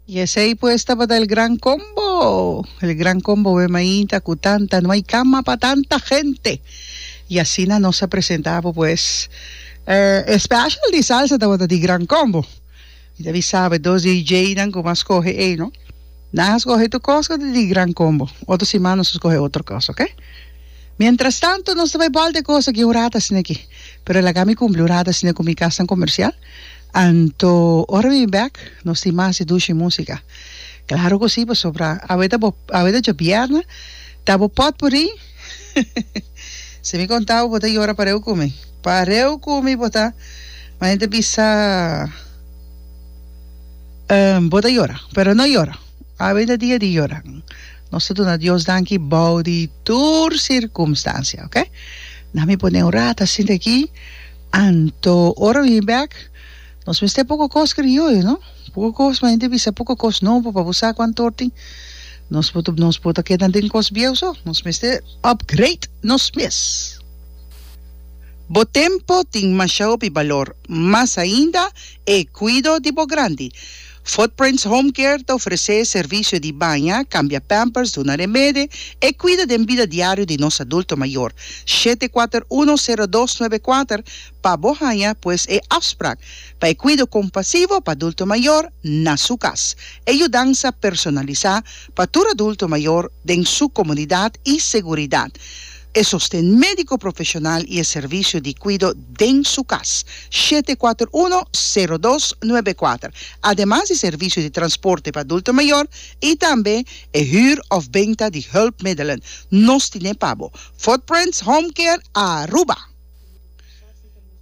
Y esey pues tabata el gran combo. El gran combo we mainta cu tanta, no hay cama pa tanta gente. Y asina nos a presentabo pues eh, e special di salsa tabata di gran combo. Y ta bisabe dos DJnan cu mas coge ey no. Nan a scoge tu cos cu ta di gran combo. Otro siman nos a scoge otro cos, ok? Mientras tanto nos ta bay balde cos aki un rato asina aki. Pero laga mi cumpli un rato asina cu mi casnan comercial. Anto ora mi bek nos tin mas di dushi musica? Claro cu si pasobra awe ta bo awe ta djobièrna ta bo pot por ri si mi conta bo bo ta yora pareu cu mi pareu cu mi bo ta mane ta bisa ehm bo ta yora pero no yora awe ta dia di yora nos ta duna Dios danki bao di tur circumstancia ok na mi pone un rato a sinti aki Anto ora mi bek nos mester poko kos krioyo no poko kos mi henter bisa poko kos nobo pa bo sa ku anto tin nos por nos por ta keda den kos bieu so nos mester upgrade nos mes bo tempo tin masha hopi balor mas ainda e kuido di bo grandi. Footprints Home Care ta ofresé servisio di baña, kambia pampers, duna remede, e kuida den bida diario di nos adulto mayor. Shete kuater uno sero dos nuebe kuater pa bo haña pues e afsprak pa e kuido kompasivo pa adulto mayor na su kas. E yudansa personalisá pa tur adulto mayor den su komunidat i seguridat. E sosten médiko profeshonal i e servisio di kuido den su kas, shete kuater uno, sero dos, nuebe kuater, ademas di servisio di transporte pa adulto mayor i tambe e hür òf benta di hùlpmiddelen, nos tine pa bo, Footprints Home Care Aruba.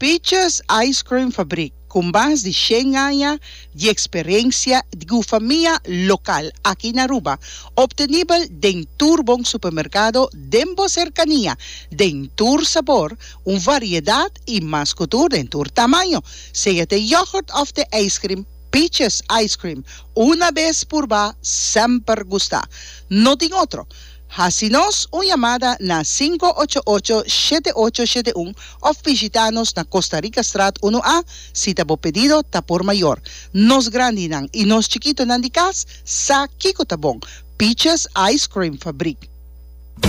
Peaches Ice Cream Fabrik, ku mas di shen aña di eksperensia di gufamia lokal aki na Aruba, optenibel den tur bon supermerkado den bo serkania, den tur sabor, un variedat i mas ku tur den tur tamaño. Sea t'e yogurt òf t'e ijskrim, Peaches Ice Cream, una bes purbá, semper gustá. No tin otro. Hasi nos un yamada na sinku ocho ocho shete ocho shete un of bishita nos na Costa Rica Straat unu A si ta bo pedido ta por mayor. Nos grandinan y nos chikitonan di cas sa kico ta bon, Peaches Ice Cream Fabriek.